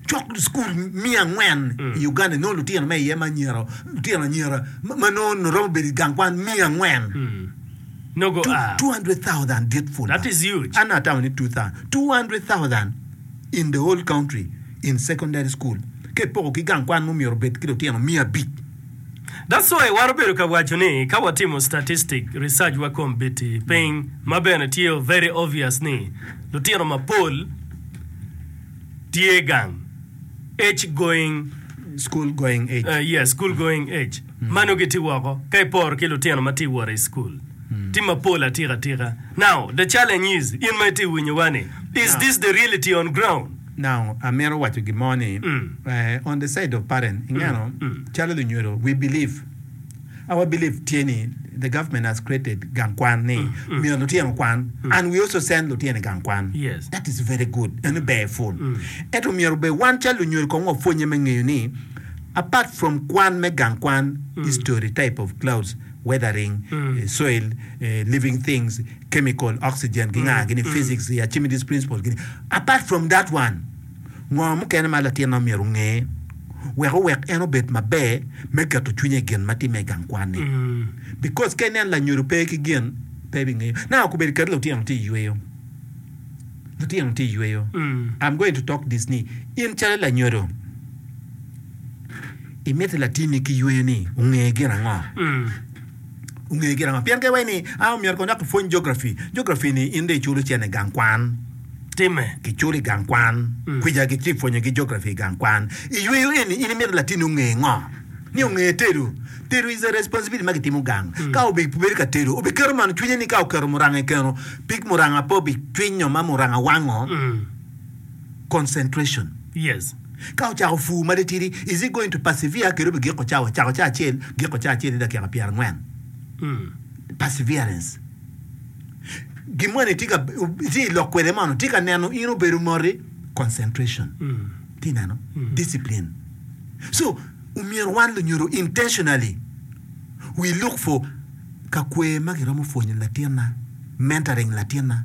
Cok cukul me angwen i Uganda inongo lutino me iye ma anyira, lutino anyira ma nongo romo bedo i gang kwan me angwen. Two hundred thousand dit pud ma. An atamo ni two thousand. Two hundred thousand in the whole country in secondary school ka ipoko ki gang kwan ma omyero obed ki lutino miya abic. That's why iwaro bedo ka waco ni ka watimo statistic research wa kombiti piny ma bene tye very obvious ni lutino mapol tye gang age going School going age. uh, yes school going age ma nongo gitye woko ka iporo ki lutino ma tye wot i school tye mapol atika tika now the challenge is in ma itye winyowa ni is this the reality on ground Now, amito waco gin mo ni, on the side of parent, ingeno, calo lunyodo, we believe, our believe tye ni the government has created gang kwan ni myero lutino okwan and we also send lutino i gang kwan. Yes. That is very good, eno ber pul. Ento myero bene wan calo lunyodo kong wapwonye me ngeyo ni apart from kwan me gang kwan, history type of clouds, weathering, soil living things, chemical, oxygen ki nga gini physics, the Archimedes principle gini. Apart from that one, ngo mukene ma latin ma myero onge wek owek en obed maber me keto cwinye i gin ma timme i gang kwanne? Because ka inen lanyodo pe ki gin pe ebingeyo. Now kobedo kadi lutino tye yweyo, lutino tye yweyo, I'm going to talk this ni in calo lanyodo, Imito latinni ki yweyo ni onge gin ango? Onge gin ango? Pien ka iwaco ni, a, omyero kong dok ipwony Geography. Geography-ni in dong iculo cen i gang kwan. Timme. Kiculo i gang kwan. Kwica ki ci ipwonyogi Geography i gang kwan. I yweyo eni, in imito latinni onge ngo? Ni onge tedo. Tedo is a responsibility ma kitimo gang. Ka obibedo ka tedo, obiketo man i cwinye ni ka oketo muranga i keno, pig muranga pe obicwinyo ma muranga wango. concentration. Yes. Ka ocako pur ma titidi, is it going to persevere kede obi giko cawa, cako cawa acel, giko cawa acel i dakika pyera angwen? Perseverance. Gin moni tye ka, itye i lok kwede mono, tye ka neno in obedo moti? Concentration. Itye neno? Discipline. So, omyero wan lunyodo intentionally we look for ka kwer ma giromo pwonyo latinna, mentoring latinna.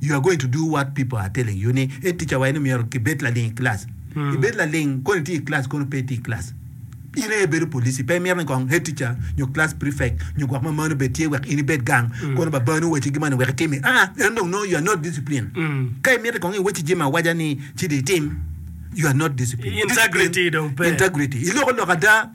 You are going to do what people are telling you ni e ticca wa en ni myero ki bed laling i class. I bed laling kono i tye i class kono pe i tye i class. In aye i bedo police pe i mito ni kong head teacher nyo class prefect nyo gwok ma mano obed tye wek in i bed gang kono ba banu owaci gi mani wek i timi aa en dong no you are not discipline. Ka i mito kong i waci jami awaja ni ci dong i tim you are not discipline. Integrity dong pe. Integrity. I loko lok ada.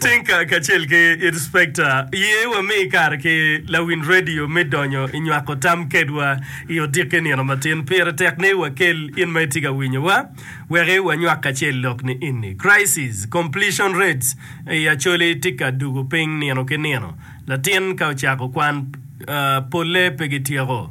Tinka kacel ki Inspekta, ye wami kare ki lawiny redio me donyo i nywako tam kedwa i odiki nino matin. Pire tek ni wakel in ma itye ka winyowa wek wanywak kacel lok ni eni, Crisis completion rates i Acholi tye ka dugo piny nino ki nino. Latin ka ocako kwan, polle pe gityeko.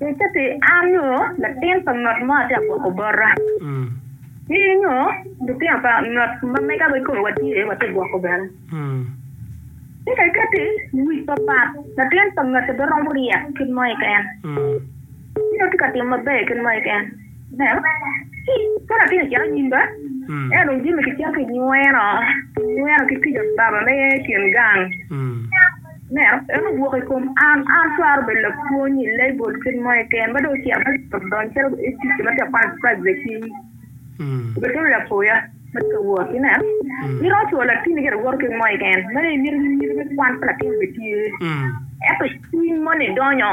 Nicce pi an nyo latin pa ngat mo atye ka gwoko bota, ci nyo lutino pa ngat ma mega wa kome watye watye ka gwoko bene. Ci ka ikatti i wic papat, latin pa ngati beromo ryek kit mo keken, ci nongo tye ka timo maber kit mo keken. Ineno? Ci ka latin ocito anyim ba, ento dong jami kicito kinyweno, kinyweno ki kica baba me kin gang. Ineno? En owok i kom an, an twero bedo lapwony i lebol kit mo keken, ma dong ocito ma ocito odonyo calo ticca ma tye ka kwano prajudicit cing. Obedo calo lapoya ma tye ka wot, ineno? Iromo cwalo latini gire woto kit mo keken, meno imito nyiri me kwan pa latin obitye. Ento cwiny moni donyo.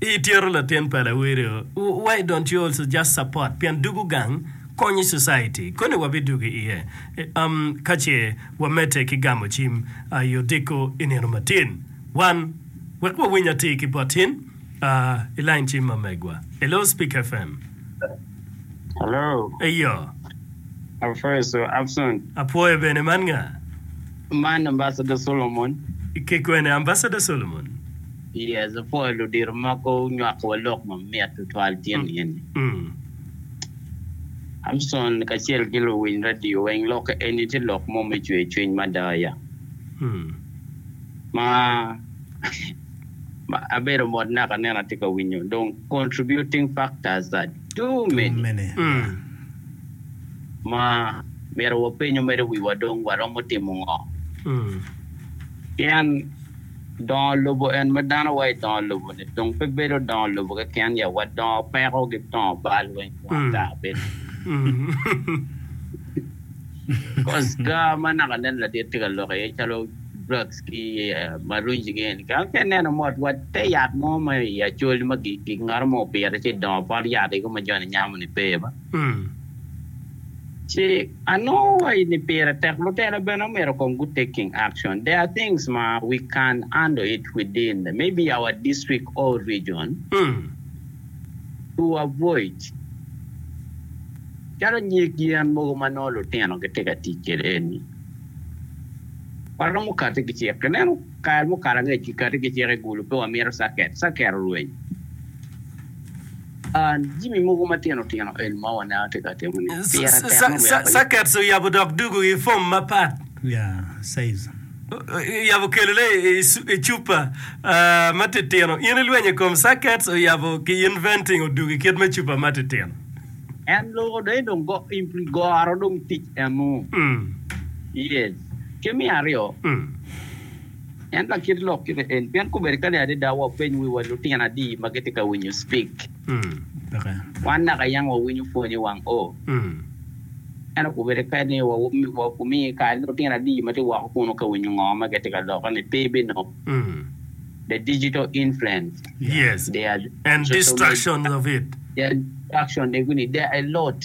Ityero latin pa lawirio why don't you also just support pien dugu gang konyi society koni wa bi dugu iye um kace wa mete ki gamo cim I odiko inino matin wan wek wa winy atir ki bot in uh I line cim ma megwa Hello speak FM. Hello. Eyo. Ape is so absent. Apwoyo bene man nga? Man Ambassador Solomon. Ki kwene Ambassador Solomon? Yes, apwoyo ludito mogo nywako wa lok mamit tutwal tyen nieni. Hamson kacel ki luwiny radio weng lok eni tye lok mo me cwer cwiny mada ya. Ma abedo mot naka aneno atye ka winyo dong contributing factors are too many ma myero wapenyo mere wiwa dong waromo timo ngo? Pien. Dongo lobo en ma dano wa i dongo lobo-ni tung pe bedo dongo lobo keken ya wa dongo peko ki dongo bal weng wang gaa bene. Cos gaa ma naka nen ladit tye ka lok iye calo drugs ki marunji ki eni kene ki ineno mot wa te yat mo ma i acol ma ki ngat mo opito ci dongo pot yat ego ma joni nyamo-ni pe ba. Ci anongo wa ni pire tek mutene bene omyero kong gu take king action. There are things ma we can handle it within maybe our district or region to avoid calo nyig yen mogo ma nongo lutino gitye ka tic kwede eni. Waromo kati ki cik. Ineno kare mukalo angec kikati ki cik i Gulu pe wamito circuit, circuit olweny. Jami mogo matino tino eni ma waneno tye ka timone pire tek me weko yub. Circuits oyabo dok dugo i fom mapat. Oyabo kelone i cupa matitino. In ilwenyo i kom circuits oyabo ki inventing odugo i kit me cupa matitino. En loko dong en dong goro dong tic enu. Yes. Ki me aryo. En ka kit lok kite en, pien kobedi kani adada wapeny wiwa lutino adi ma gitye ka winyo spik. Wan naka yam wawinyo pwony i wang O. Ento kobedi kani wamiyo kare ni lutino adi ma tye woko kunu ka winyo ngo ma gitye ka loko ni pe bino. The digital influence, there are, social media, there are distractions of it, there are a lot.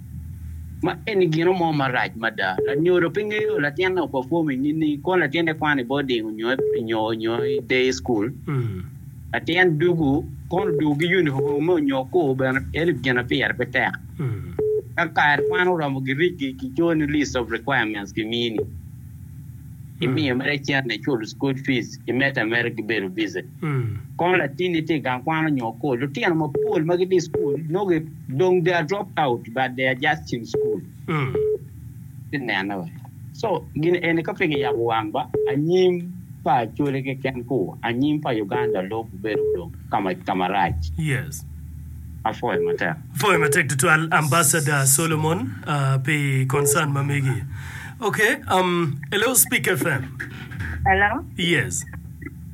Ma eni gino mo marac mada! Lanyodo pe ngeyo latinne opafom i nining. Kong latinne kwano i boding onyo nyo onyo i day school. Latin dugu kono dugu ki yunifomme onyo kor bene elip gin ma pire pe tek. Ka kare kwano oromo girigi kicoyo ni list of requirements kimini. Imiyo mere cente iculo school fees, imedde ameda ki bedo busy. Kong latin ni tye i gang kwan onyo kol. Lutino mapol ma gitye i school nongo gi dong they are dropped out but they are just in school ki nene wa so gin eni ka pe ki yabo wang ba anyim pa Acholi keken ku anyim pa Uganda lub bedo dong kama kamarac. Yes. Apwoyo matek. Apwoyo matek tutwal Ambassador Solomon pi concern ma megi. Okay, um, hello Speak FM. Hello. Yes.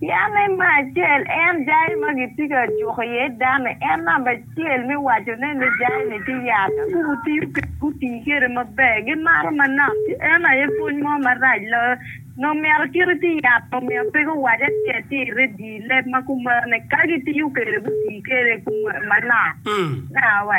Pien ni me acel en jai ma gitye ka juko iye dano-ni en namba acel me wacone ni jai-ni tye yat. Ka gutiyo kwede, gutii kwede maber, gimato manok, ci en aye pwony mo marac loyo. Nongo myero kit iti yat nongo myero pe guwac acel tye i redio, i leb ma kumeno ni ka gitiyo kwede, gutii kwede manok. Nawa.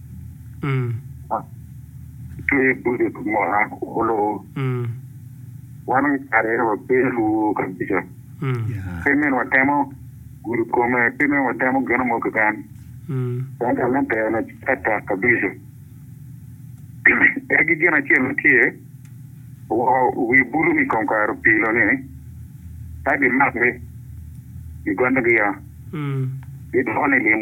ki budget mo a kulu wan me kare eno wabedo lwor kabija pe meno watemo gudo kome pe meno watemo gino mo keken dong talanta eno tye atek kabija egi gin acel ma tye woko wi buto ni kong kare opilo ni ka gimakgi gigonyo giya gidwoko ni lim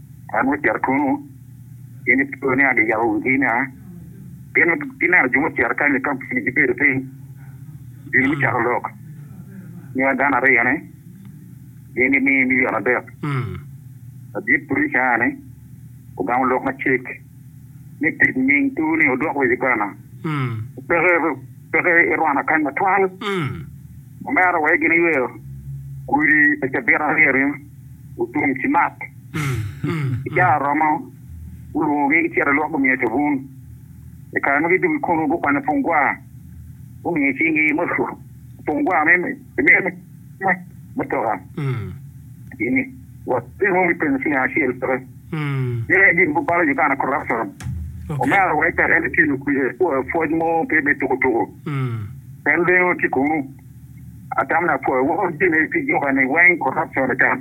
An wacito twongo, in ipoyo ni agiyabo wigi nia, pien gineno jo mucito kany i kampuni gibedo piny, gin gucato lok ni wa dano aryo-ni gin gimiyo milion adek. Ladit purica-ni ogamo lok macek ni tic nying tur-ni odok wa i Uganda, peke irwana kany matwal. Omera wek gin eyweyo kudi pa cabit aryo ni otum ci mak ki caa oromo gulwongo gi gicito i lwok gumiyo cabun i kare ma gidugo ikunu gukwanyo pung gwaa gumiyo cing gi pung gwaa me mutoka. Watemo me penyo ping acel pe ye gin buk balo Uganda corruption. Omera wek pe en tye pwoc mo pe me tuku tuku en lengo tye kunu atam na pwoc weko jami pi juka ni weng corruption otam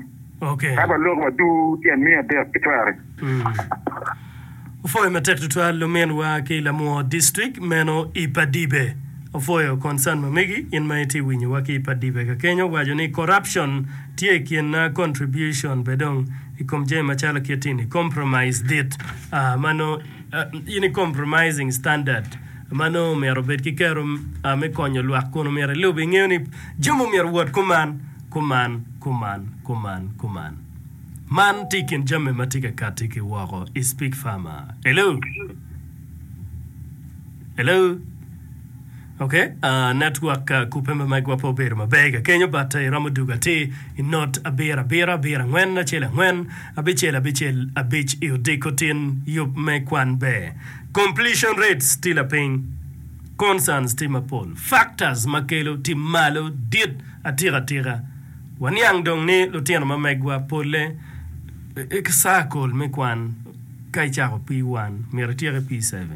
ka ba lok wa dur tye amiya dek ki twere. Opwoyo matek tutwal luminwa ki lamor distrik meno i Padibe. Opwoyo concern ma megi in ma itye winyo wa ki i Padibe ka kenyo waco ni corruption tye i kin na contribution be dong i kom jami ma calo kit ini compromise dit ah ma no ah ini compromising standard ma no omyero obed ki kero ah me konyo lwak kun omyero ilub ingeyo ni jami omyero wot kuman kuman kuman kuman kuman. Man tye i kin jami ma tye ka katti ki woko i Speak Farmer. Hello? Hello? Ok, uh, network uh, kupe ma megwa pe obedo maber ka kenyo but uh, iromo dugo atir i not abiro abiro abiro angwen acel angwen abicel abicel abic i odiko tin yub me kwan ber completion rates tye lapiny concerns tye mapol factors ma kelo tye malo dit atika atika Waniang dong ni lutino ma megwa polle ki saa kol me kwan ka icako P1 myero ityek i P7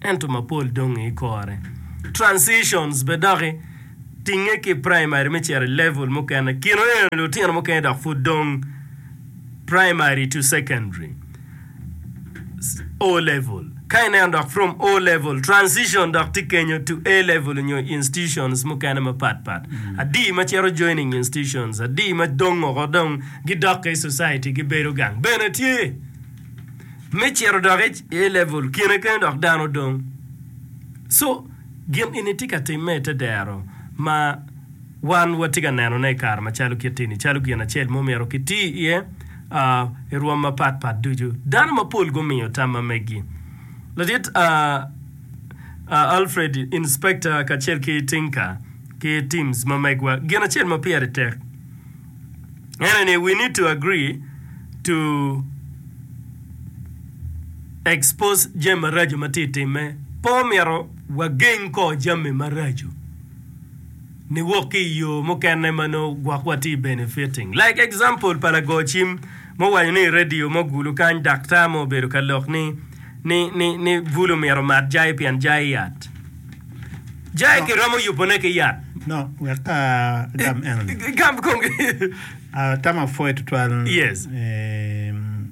ento mapol dong i ikore. Transitions be doki tinge ki primary me cito i level mukene kino eno lutino mukene dok pud dong primary to secondary. O level, ka ineno dok from O level transition dok tye kenyo to A level nyo institutions mukene mapat pat adi ma cito joining institutions adi ma dong oko dong gi dokke i society gi bedo gang bene tye me cito dok i A level kine kene dok dano dong so gin eni tye ka timme i te dero ma Wan watye ka nenone i kare macalo kit eni calo gin acel ma omyero kiti iye i rwom mapat pat ducu. Dano mapol gumiyo tam ma megi. Ladit Alfred, Inspekta, kacel ki Tinka ki Tims ma megwa, gin acel ma pire tek ene ni we need to agree to expose jami maraco ma tye timme. Pe omyero wageng ko jami maraco. niwok ki i yo mukene ma nongo gwokwa tye benefiting. Like example pa lago cim ma owaco ni i radio mo gulu kany daktar mo obedo ka lok ni ni ni ni bulu myero omat jai pien jai yat. Jai kiromo yubo ne ki yat. No, wek ka agam eno ni. Gam kong. Atamo apwoyo tutwal. Yes. Eem.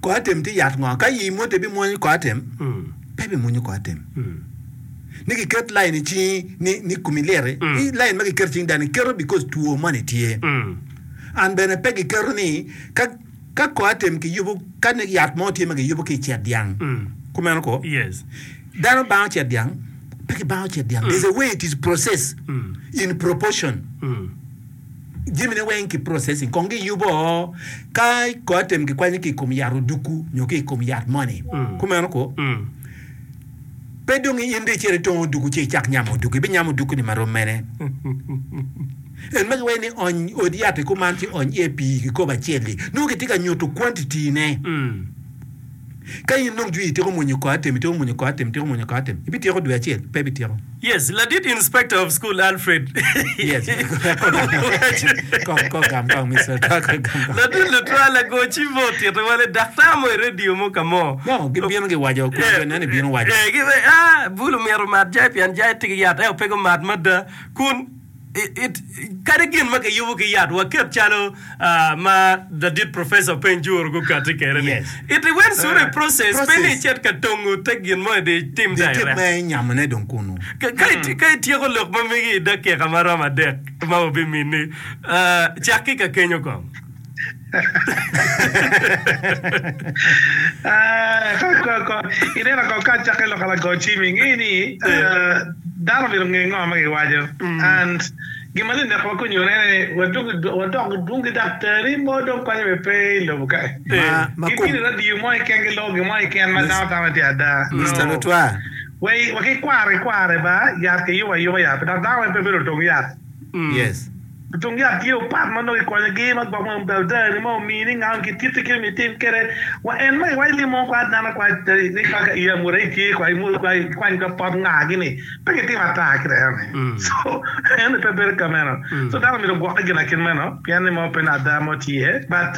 Kor atem tye yat ngo? Ka i moti ibimwonyo kor atem? Pe ibimwonyo kor atem. Ni kiket lain i cingi ni, ni komi liti, i lain ma kiketo i cing dano-ni keto bikos two moni tye. An bene pe giketo ni ka ka kor atem kiyubo ka ni yat mo tye ma kiyubo ki i cet dyang. Kumeno ko. Dano bango cet dyang? Pe kibango cet dyang. There's a way it is processed in proportion. jamine weng ki processing kong giyubo ka ko atem kikwanyo ki kom yat oduku nyo ki kom yat moni mm. kumeno ko mm. pe dong in de cere tongo oduku ce icak nyamo oduku ibi nyamo oduku ni marom mene en magi weng ni ony od yat ikuman ci ony iye pii kikobo acel-li nongo kitye ka nyuto quantity ne mm. Ka in dong jwi ityeko mwonyo kor atem, ityeko mwonyo kor atem, ityeko mwonyo kor atem, ibityeko dwe acel? Pe ibityeko. Yes, ladit inspector of school Alfred. Yes, kor gam kong Mister Tucker, gam kong. Ladit lutwal agoci mo otito wale daktar mo i radio mo ka mo. No, gibino giwaco, kun jo nene bino waco. Eh, eh, Bulu myero omat jai pien jai tig yat, eo pe gumat mada. Kun. Kadi gin ma kiyubo ki yat, waket calo ma ladit professor Peng Jur gukati kede ni, it i wen sure process pe ni icit ka tongo te gin mo idi tim da irek. Ka ityeko lok ma megi i dakika ma romo adek ma wabimini, cak ki ka kenyo kong. Ineno kong ka acakki lok lago cim inge ni dano myero onge ngo ma giwaco and gin ma dong wakwako nyone wadok dwong ki daktari mo dong konyo be pe i lobo ka ki bini radio mo keken ki loko gin mo keken ma dano tamo tye ada no waki kwaro ki kwaro ba yat ki yubo ayuba yat dok dano pe bedo otong yat. Tung yat tye opat ma nongo ikonyogi ma gwok ma Baldani ma omiyi ni ngau ki titi ki omiyi itim kede wa en ma iwaci ni mung kwa dano kwa ni ka ka i amura itye kwa imul kwa ikwany ka pot nga gi ni pe ki tim ata ki dano ni so en ni pe bedo ka meno so dano omyero ogwokke gina kin meno pien ni mo pe ni ada mo tye but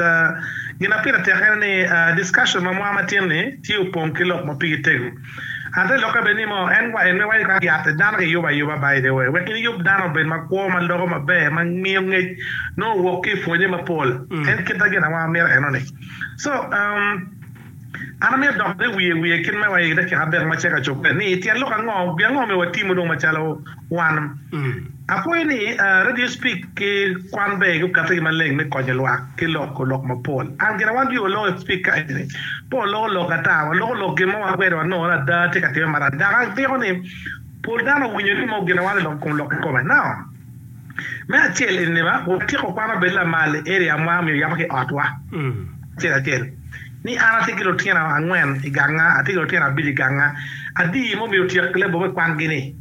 gina pire tek en ni discussion ma mwa ma tin ni tye opong ki lok ma pigi tego. Ate lokke bene ni moo, en kwayo ni wayub yat i dano kiyubo ayuba, by the way, wek niyub dano obed makwo, ma loko maber, ma miyo ngec nongo wok ki i pwonye mapol. En kita gin awanga mito enoni. So, um, an amito dok ni wiye wiye kit me wa i dakika abek ma ceka cobbe, ni tyen lok ango, pi ango myero watimu dong macalo Wan. Apwoyo ni Radio Speak ki kwan ber gi okatte gi maleng me konyo lwak ki loko lok mapol. An gin awan jure loko i Speak ka eni ni, pe waloko lok ata, waloko lok gin mo ma kwede wanongo ni ada tye ka timme marani. Dok agiko ni pol dano owinyo ni mo gin awan i kom lok kikome. Now, me acel eni ni ma, watyeko kwan obedo lamal i area mwa omyero yabo ki i otwa acel acel ni an atye ki lutino angwen i ganga, atye ki lutino abic i ganga, adi ma omyero otyek lebo me kwangi ni?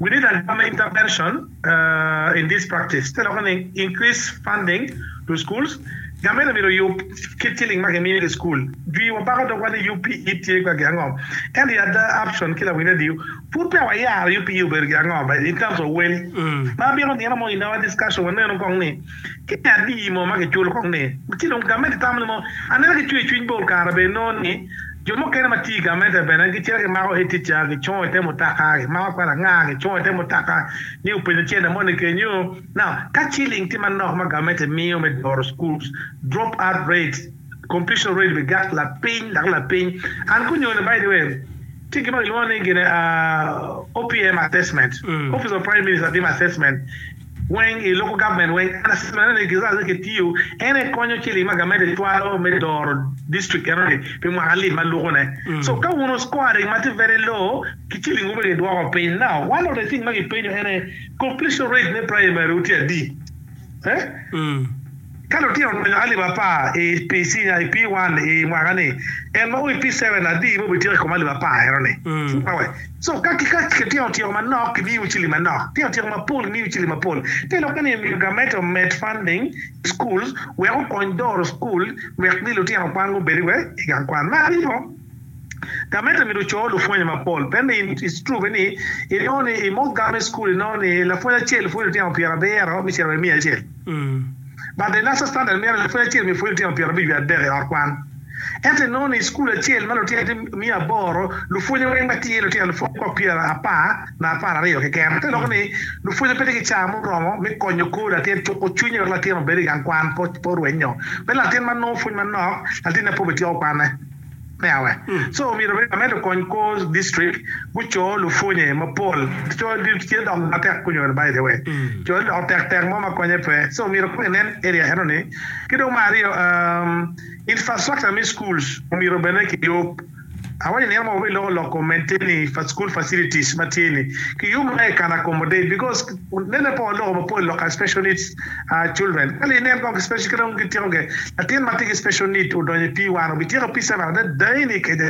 We need a government intervention in this practice, te loko ni increase funding to schools, Gament omyero oyub kit ciling ma gimiyo ki school. Jwi wa bako dogwa ni UPE tye kwagi ango? Ento i ada Upson ki lawiny radio pud peya wayaro UPE obedo gi ango in terms of wel. Ma abino nino mo in our discussion wanenu kong ni Ki adi mo ma kiculo kong ni ci dong gamente tamo ni mo? Anena ki cwer cwiny bor kare bene inongo ni jo mukene ma tiyo i gamente bene gicito gimako etica gicongo i te mutoka, gimako kwelanga gicongo i te mutoka ni openyo cente mo ni kenyu. Now, ka ciling tye manok ma gamente miyo me doro schools, drop out rate, completion rate bi gak lapiny dok lapiny. An kunyo ni by the way tye gin ma kilwongo ni gin OPM assessment, Office of Prime Minister timo assessment, weng i loko government weng an a same ni giza aze ki tiyo en aye konyo ciling ma government aye twalo me doro district eno ni pi mwaka lim ma luko ne so ka wun scoring ma tye very low ki ciling wu pe ki dwoko piny now one of the thing ma ki penyo en aye completion rate me primary wu tye adi eh Ka lutino odonyo alip apar i pi cinya i pi one i mwaka ni, en ma o i pi seven adi ma obityeko i kom alip apar eno ni? Awe. So ka ki ka ki tino tyeko manok ki miyo cili manok, tino tyeko mapol ki miyo cili mapol. Pe lokke ni myero gamente omed funding i schools wek okony doro school wek ni lutino kwan gubedi wek i gang kwan. Me aryo. Tameta myero oco lupwonye mapol pien ni it's true ni inongo ni i mock government school inongo ni lapwony acel pwonyo lutino pyera abiro me cito wa i miya acel but the national standard mito ni lapwony acel myero pwony lutino pyera abic wiye adek i ot kwan ento inongo ni i school acel ma lutino tye miya aboro lupwonye weng ma tye lutino lupwony kor pyera apar na apar aryo keken te loko ni lupwonye pe tye ki caa muromo me konyo kor latin cuko cwinye wek latin obed i gang kwan pe orwenyo pe latin ma nongo pwony manok latinne pe obi tyeko kwane. me awe. So omyero bed lamed okony kor district guco lupwonye mapol co tye dok matek pwonyo eno by the way co ni dok tek tek mo ma konye pe so omyero kong inen area eno ni ki dong ma aryo um, infrastructure me schools omyero bene ki yub awaco ni eno ma wabeloko loko maintain fa school facilities ma tye ni ki yub ma e can accommodate because Pud mene po loko mapol lok ka special needs children. Kale inen kong ki special kite wun ki tyeko ge latin matye ki special need odonyo i P one obityeko P seven ada dayi ni kede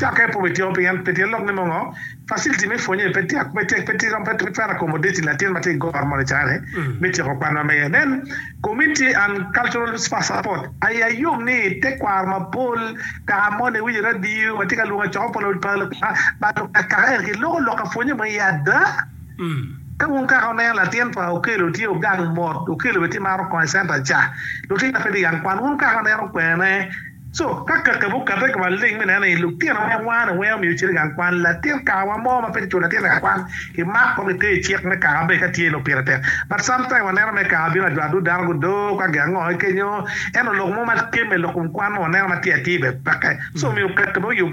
cake pe obityeko pien pe tyen lok ni mo ngo facility me pwonye pe tyak pe tek pe tiro pe twero accommodating latin matye ki goro mo lacara ne me tyeko kwan ma mege then community and cultural support aye ayom ni te kwaro mapol kaka moni iwinyo radio watye ka lwongo acoko pa lukaka ento ki loko lok ka pwonye mo iye ada. Ka wun kaka wuneno latin pa Okello tye ogang mot, Okello bene tye maro kong i center ca. Lutino aye pe tye yam kwan, wun kaka wuneno kwene. Co, ka kakabbi okate ka maleng me neno ni lutino ma wano ni weng omiyo ocito i gang kwan, latin kaka wa mo ma pe kiculo latin i gang kwan, kimak kong kite i cik me kaka be ka tye lok pire tek. But sometime waneno me kaka bino ajwa adut dano gudo ka gi ango kenyo. Ento lok mo ma kemme lok kom kwan ma waneno ma tye atir be peke. So omiyo kakabbi oyub.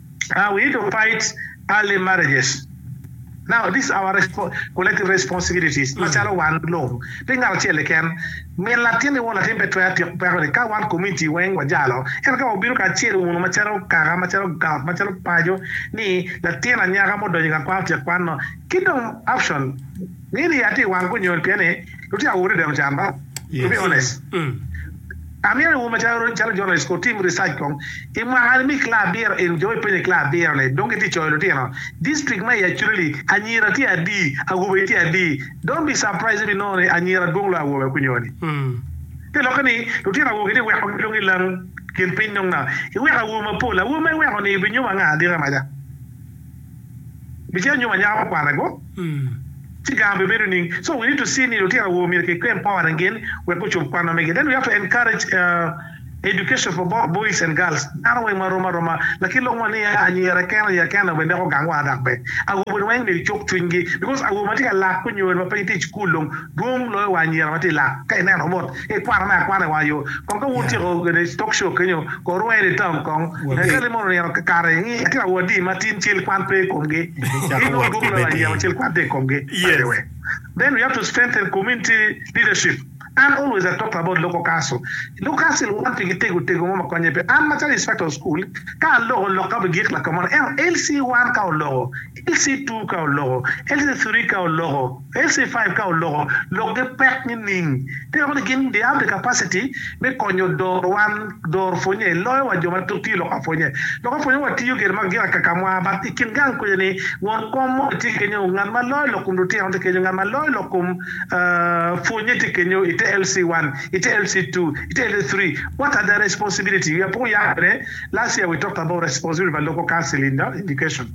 Now we need to fight early marriages now this our collective responsibilities macalo wan lung pe ngat acel keken min latin ki won latin pe twero tyeko peko ni ka wan community weng wajalo ento ka wabino kacel wunu macalo kaka macalo gang macalo paco ni latin anyaka ma odonyo igang kwan otyeko kwan no kidong option nini aye tye iwang kunyon pien ni Lutino awobe bene ocan ba, to be honest. Amyero iwor macalo calo journalist ko tim research kong i mwaka ni mi class abiro in jo ipenyo i class abiro ni dong gitye coyo lutino district ma i acholi anyira tye adi awobe tye adi don't be surprise ibi nongo ni anyira dwong loyo awobe kunyo ni te lokke ni lutino awobe gitye weko gi dong ilang kin piny dong na iweko awobe mapol awobe ma iweko ni ibi nyomo anga adita maca. Bicito nyom anyaka ma kwanna go ci gang bibedo ning. So we need to see ni lutino awobe myero ki empower ngin wek gucub kwanwa mege. Then we have to encourage education for both boys and girls. Dano weng ma rom aroma lakin lok ma niya anyira kene oya kene bene dok ogang wa dok be awobe weng myero icuk cwiny gi because awobe ma tye ka lak onyo ma pud gitye i school dong dwong loyo wa anyira ma tye lak ka ineno bot I kwano me akwana i wang yo kong ka wun otyeko kwede talk show kenyo, kor rwongo iye ni tam kong. Hekali mono onino kare i nge tira wadi ma tin cel kwan pe i komgi. Inongo gwoki loyo anyira ma cel kwan tye i komgi. By the way, then we have to strengthen community leadership. An always I talked about local council. Local council wan pigi tego tego mo ma konye pe. An macalo instructor of school, ka aloko lok ka bigik lakamono, ento LC one ka oloko, LC two ka oloko, LC three ka oloko, LC five ka oloko lokgi pek nining? Ti dok ni gin they have the capacity me konyo dor wan dor pwonye i loyo wa jo ma tiyo lok apwonya. Lok apwonya wa tiyo gire ma gin akaka mwa but i kin gang kuja ni won kom mo ni tye kenyo ngat ma loyo lok kom lutino ti kenyo ngat ma loyo lok kom pwonye ti kenyo ite LC one ite LC two ite LC three what are their responsibility we are poko yat bene last year we talked about responsibility pa local council in the education.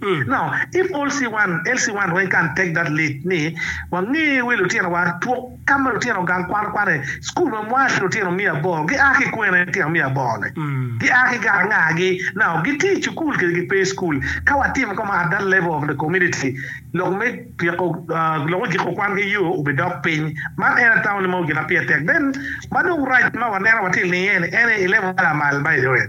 Now if all see one el see one went can take that lead ni wange wi lutino wa twok kama lutino gang kwano kwane school ma mwa ki lutino miya aboro gi a ki kwene lutino miya aboro ne gi a ki gara nga gi now gi tye school kede gi pe school ka wa timo kama at that level of the community lok me ryeko lok me giko kwan ki yo obi dok piny man en atamo ni meno gina pire tek then ma dong rac ma wa neno wa tye ilinge ni ene ilevel ma lamal ma iloyo.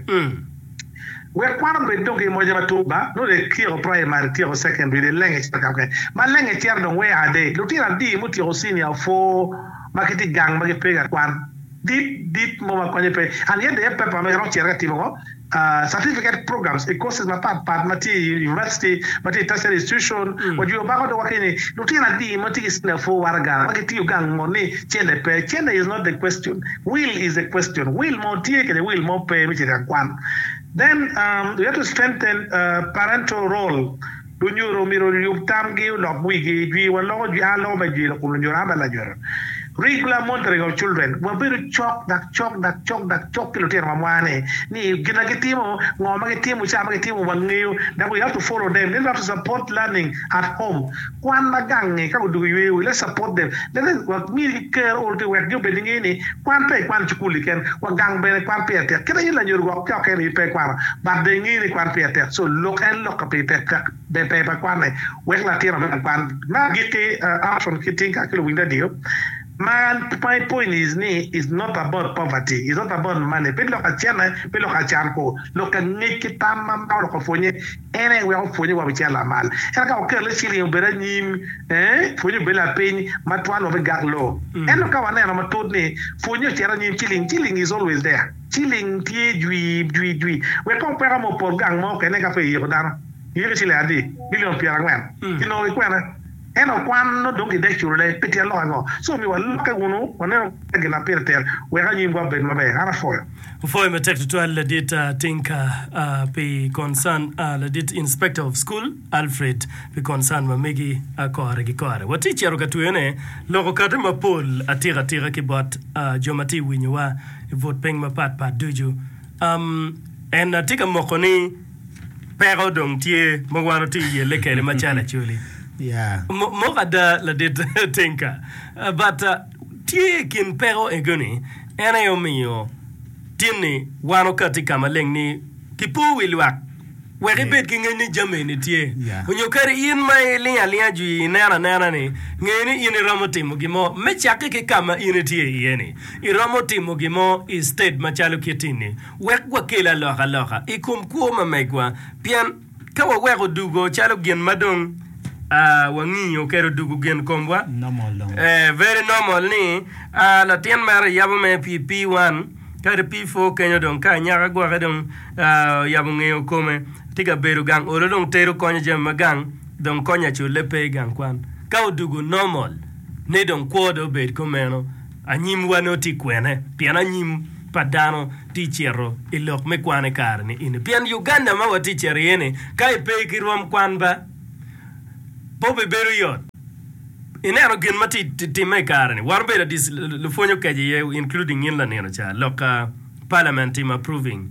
Wek kwan obed dong ki moja matut ba, nongo etyeko praimari, etyeko sekendari, dong elenge cito ka mukene. Malenge cito dong wea adek. Lutino adi mutyeko cinia opwoo ma gitye i gang ma gipe ka kwan. Dit dit mo ma konyo pe. An yadde aye paper ma iromo cito ka timo ngo? Certificate programs i courses mapat pat ma tye i University, ma tye i tertiary institution. Wajwiyo bako dong waki ni lutino adi ma tye ki cinia opwoo waraga ma gitiyo gang ngo ni cente pe? Cente is not the question. Will is a question, will mo tye kede will mo pe me cito i akwan. Then um we have to strengthen uh parental role, lunyodo omyero oyub tamgi olok wigi, jwi wa loko jwi, a loko me jwi lakum lunyodo a me lanyodo. Regular monitoring of children, wabedo cok dak cok dak cok dak cok ki lutino wa mwa ni, ni gin na gitimo, ngo ma gitimo, ca ma gitimo wangeyo, dak we have to follow them, then we have to support learning at home. Kwan ma gange ka odwogo yweyowu, let's support them, let us wa mi ker ool ki wek jo bene nge ni kwan pe ikwano cukul-li ken, wa gang bene kwan pire tek kit aye lanyodo gwok ki oken aye pe ikwano but dong inge ni kwan pire tek so lok en lok ka pire tek tek ber ber pa kwane wek latino me kwan me agikki Armstrong ki Tinka ki luwiny radio ma my point is ni is not about poverty is not about money pe lok acene pe lok acan ko lok angec ki tam ma ma oloko pwonye En aye weko pwonye wa bicito lamal, ento ka wakelle ci ringo bedo anyim, ee, pwonye obedo lapiny ma twal wa me gak loo. Ento ka waneno matut ni pwonye ocito anyim, ci ling, ci ling is always there, ci ling tye jwi, jwi, jwi, wek kong peka mo opot gang mo kene ka pe iyiko dano, iyiko i ciliang adi? Bilion pyerangwen, kinongo ki kwene? En okwan nongo dong gidek culone pi tyen lok ango? Ci omiyo walokke wunu wanenu kare gin ma pire tek, wek anywimgi obed maber. An apwoyo. Apwoyo matek tutwal ladit Tinka pi concern, ladit Inspector of School Alfred pi concern ma megi kore ki kore. Watye cito ka tweyone lok okate mapol atika atika ki bot jo ma tye ka winyowa i but piny mapat pat ducu. En tye ka moko ni. peko dong tye ma wan watye yelle kede ma cal acoli. Yeah. Mo- Moko ada ladit Tinka. Uh, But uh, tye i kin peko ego ni en aye omiyo tinni wan okati i ka maleng ni kipo wi lwak wek Yeah. ibed ki ngec ni jami eni tye. Yeah. Onyo kadi in ma iling alinga jwi ineno anena ni nge ni in iromo timo gin mo me cakke ki ka ma in itye iye ni. Iromo timo gin mo i state macalo kit ini. Wek wakel alokaloka i kom kwo ma megwa, pien ka waweko dugo calo gin ma dong wangiyo kede odugo gin komwa, very normal ni latin mere oyabo mere pi P1 kadi P4 kenyo dong ka anyaka gwoke dong oyabo ngeyo kome tye ka bedo gang olo dong tero konyo jami ma gang dong konyo acule pe gang kwan ka odugo normal ni dong kwo dong obed komeno. Anyimwa nongo tye kwene? Pien anyim pa dano tye cito i lok me kwan i kare ni eni. Pien Uganda ma watye cito iye ni, ka i pe ki rwom kwan ba, pe obibedo yot. I neno gin ma tye timme i kare ni, warobedo adi lupwony okece iye including in lanino ca, lok ka parliament timo approving.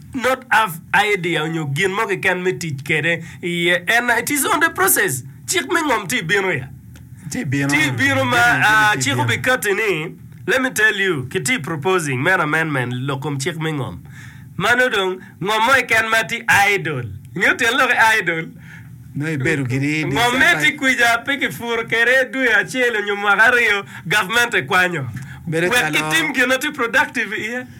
not have idea onyo gin mo keken me tic kede iye ena it is on the process cik me ngom tye bino ya Tye bino. tye bino ma Jami ah, mukene tye cik bino. obikati ni let me tell you ki tye proposing men amendment lok kom cik me ngom mano dong ngom mo keken ma tye idle ingeyo tyen lok ki idle Nongo ibedo gini i ngom me tye kwica pe ki puro kede dwe acel onyo mwaka aryo government ekwanyo Bedo wek calo- itim gin na tye productive iye.